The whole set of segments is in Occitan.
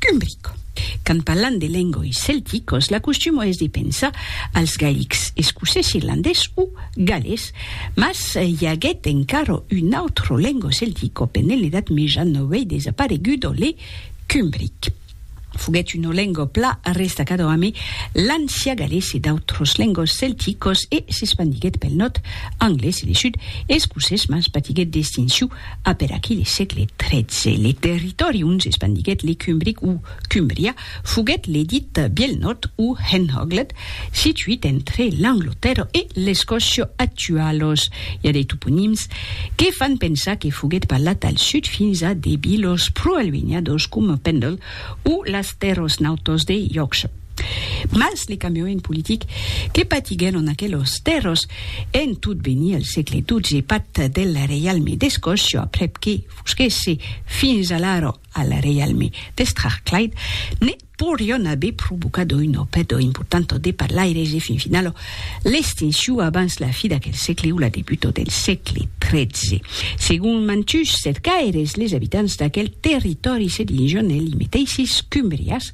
Cumbrico. Quand parlam de lengoi celticos, l'acostumo es de pensar als gailics, escocés, irlandés o gallés, mas i aguèt encara un autre lengo celtico pendent l'Edat Meja novei desaparegudo, le cumbric. Foguèt una lengo pla restacada amé l'ancià gallés e d'autres lengos celticos e s'espandiguèt pel nòrd anglés e le sud escocés, mas patiguèt d'extinciu Aperaquí le sègle XIII, le territòri ont s'espandiguèt le Cumbric o Cumbria foguèt le dit Biel Nòrd o Henhoglet, situit entre l'Anglotèrra e l'Escòcia actualos. I a de toponims que fan pensar que foguèt parlat al sud fins a de vilos pro-alunhados coma Pendle o las Terros Nautos de Yorkshire. Mas le cambiament politic que patiguèron en aquelos tèrros en tot venir al sègle xii pat del reialme d'Escòcia, aprèp que fusquèsse fins alara al reialme de Strathclyde, ne podrián aver provocat una pèrda importanta de parlaires e fin finala l'extincion abans la fi d'aquel sègle o la debuta del sègle xiii. Segon mantuns cercaires, les abitants d'aquel territòri se disián ells meteisses Cumbrias,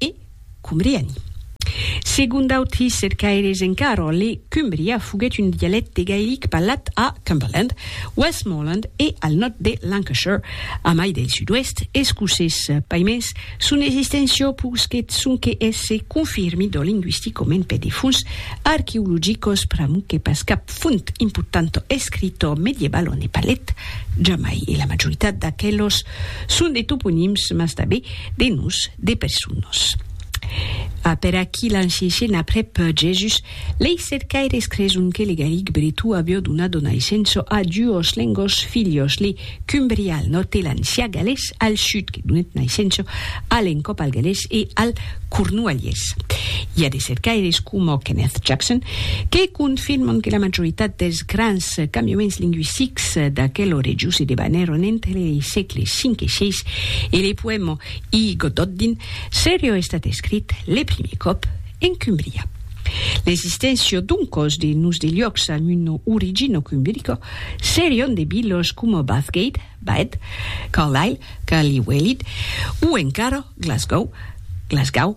E cumbriani. Segon d'autri cercaires en Carroll, le Cumbria foguèt un dialècte gaelic parlat a Cumberland, Westmorland e al nòrd de Lancashire, a mai del sud-oèst escocés. Paimens, son existéncia posquèt sonque èsser confirmida lingüisticament per de fonts arqueologicas, pr'amor que pas cap font importanta escrita medievala ne parlèt jamai, e la majoritat d'aquelas son de toponims, mas tanben De nos, de personas. A per aquí l'enseishen aprèp Jèsus, lei cercaires creson que le gallic bretó avió donat o naissença a duos lengos filhos, le cumbrià al nòrd e l'ancià galés al sud, que donèt naissença a l'encòp al galés e al cornualhés. I a de cercaires coma Kenneth Jackson que confirman que la majoritat dels grans cambiaments lingüistics d'aquel orejós se debanèron entre lei sègles 5 e 6 E le poèma I Gododdin serió estat escrit le primier còp en Cumbria. L'existéncia d'un còs de nus de liòcs amb una origina cumbirica serión de vilas coma Bathgate, Bath, Carlisle, Carly Welid, o encara Glasgow, Glasgaw,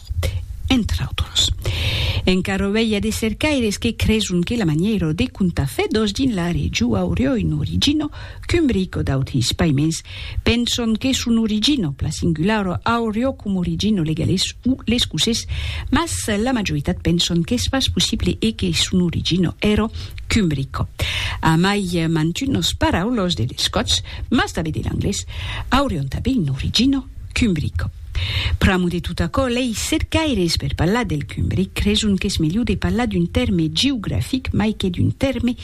entre autres. Encara auei a de cercaires que creson que la manièra de contar fedòs dins la region aurió un origino cumbric o d'autres paiments penson que son origino, pla singulara, aurió com origino legalés o l'escocés, mas la majoritat penson qu'es pas possible e que son origino èra cumbrica. Amai mantunas paraulas de l'escotz, mas tanben de l'anglés, aurion tanben un origino cumbrica. Pr'amo de tot aquò, lei cercaires per parlar del cumbric creson qu'es melhor de parlar d'un tèrme geografic mai que d'un tèrme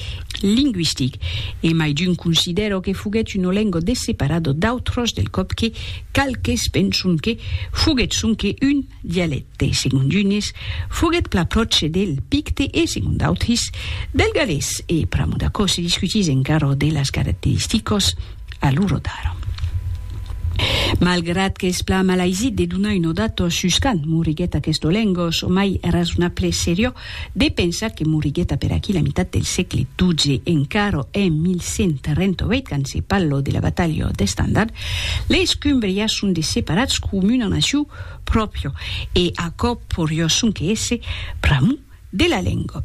lingüistic. E mai d'un considèro que foguèt un olengo de separado d'autros del còp que qualques penson que foguèt sonque un dialècte. Segon d'unes, foguèt plan pròche del picte e, segon d'autres, del galés. E pr'amo d'aquò se discutís encara de las caracteristicas. A lo rotard. Malgrat qu'es plan malaisit de donar un odato sus quand moriguèt aquest olengos, çò mai rasonable serió de pensar que moriguèt a per aquí la mitat del sègle xii. Encara en 1138, quand se pallo de la batalha d'Estandard, les Cumbrias son de separats com una nacion pròpria e aquò porió sonque èsser pr'amor de la lenga.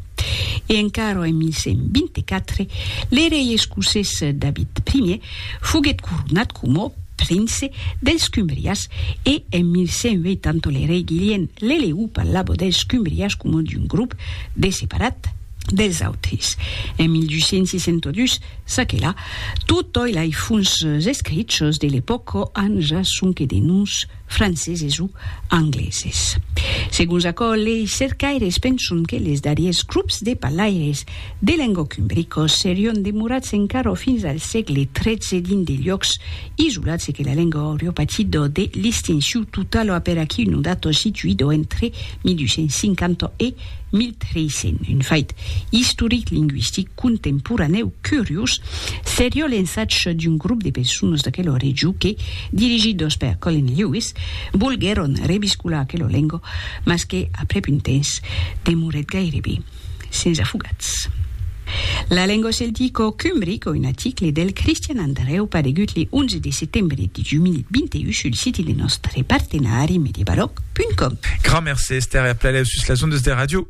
E encara en 1124, le rei escocés David Ier foguèt coronat coma prince dels Cumbrias e en 1180 le rei Guilhèm l'LU parlava dels Cumbrias coma d'un grop de separat dels autres. En 1262, ça que la, totòi lai fons escrichos de l'epòca an ja sonque de noms franceses o angleses. Segons aquò, lei cercaires penson que les darriers grops de parlaires de lengòc umbricos serion demorats encara fins al sègle XIII dins de luòcs isolats e que la lenga aurio patido de listinciu total a per aquí un dato situido entre 1250 e 1300, un fait istoric lingüistic. contemporanèu curiós seriá l'ensatge d'un grop de personas d'aquela region que, dirigidos per Colin Lewis, volguèron reviscolar aquela lenga, mas que, aprèp un temps, demorèt gairebe sens afogats. La lenga celtica cumbrica, un article del Cristian Andrèu paregut le 11 de setembre de 2021 sul siti de nòstre partenari Mediabalòc.com. Grand merci Esther e a plailèu sus las ondas de ràdio.